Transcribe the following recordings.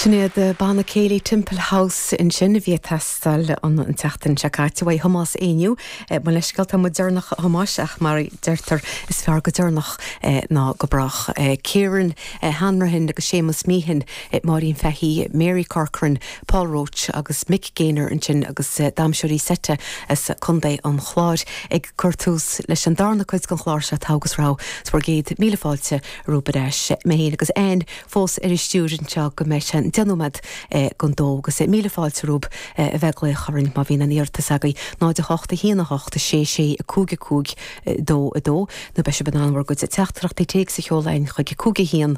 Sin iad Banna Céilí Templehouse ansin a bhí ag teastáil an tseachtain seo caite uaidh Thomás Éinniú. Mo leithscéal, tá muid deireanach a Thomáis ach mar a deirtear is fearr go deireanach ná go brách. Kieran Hanrahan agus Séamus Meehan, Máirín Fahy, Mary Corcoran, Paul Roche agus Mick Gaynor ansin agus damhsóirí seite as Contae an Chláir ag cur tús leis an darna cuid den chlár seo, Togha agus Rogha. Is bhur gcéad míle fáilte romhaibh ar ais. Mé féin agus Anne fós ar an stiúir anseo go mbeidh sé ina dheich nóiméad don dó agus míle fáilte romhaibh a bheith ag glaoch orainn má bhíonn aon iarratas agaibh, 0 8 1 8 6 6 5 5 2 2 nó beidh sibh in ann bhur gcuid teachtaireachtaí téacs a sheoladh chuig 5 1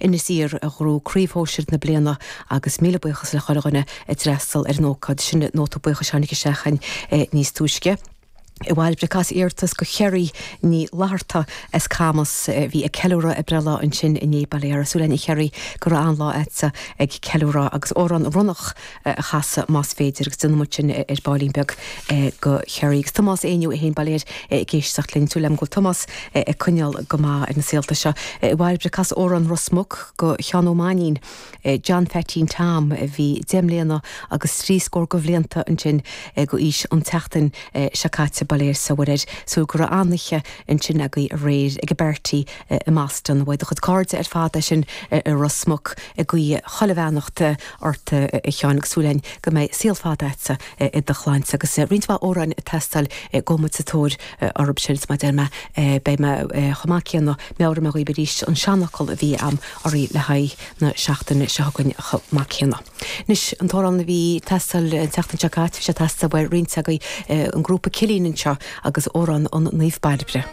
Inis Oírr a ghnóthaigh craobh shóisir na bliana agus míle buíochas le chuile dhuine a d'fhreastal ar an ócáid sin. Nóta buíochais a tháinig isteach chugainn níos túisce. A Bhairbre, cas iarratas go Cherry Ní Fhlatharta as Camas a bhí ag ceiliúradh a breithlá ansin inné, bail ó Dhia uirthi. Súil againn a Cherry go raibh an-lá agatsa ag ceiliúradh agus Amhrán Ronnach, a chasadh más féidir agus déanfaimid sin ar ball beag go Kerry. Agus Tomás Éinniú é féin, bail ó Dhia air, ag éisteacht linn, súil agam go bhfuil Tomás ag coinneáil go maith ar na saolta seo. A Bhairbre, cas Amhrán Ros Muc go Sheán Ó Mainnín, John Pheaitín Tom a bhí deich mbliana agus trí scór de bhlianta ansin d'aois an tseachtain seo caite, bail ó Dhia is Muire air. Súil go raibh an-oíche ansin agaibh aréir ag an bpáirtí i mBoston. Beidh do chuid cairde ar fad ansin i Ros Muc ag guí chuile bheannacht ort, a Sheáin, agus súil againn go mbeidh saol fada agatsa i do shláinte agus roinnt mhaith amhráin ag teastáil gabhfaidh muid sa tóir orthu sin, mar a deir mé. Beidh mé chomh maith céanna, meabhróidh mé dhaoibh arís an seanfhocal a bhí a'am oraibh le haghaidh na seachtaine seo chugainn chomh maith céanna. Anois, an t-amhrán a bhí ag teastáil an tseachtain seo caite, bhí sé ag teastáil, bhuel, roinnt agaibh, an grúpa Cillín anseo agus amhrán an Naomh Bairbre.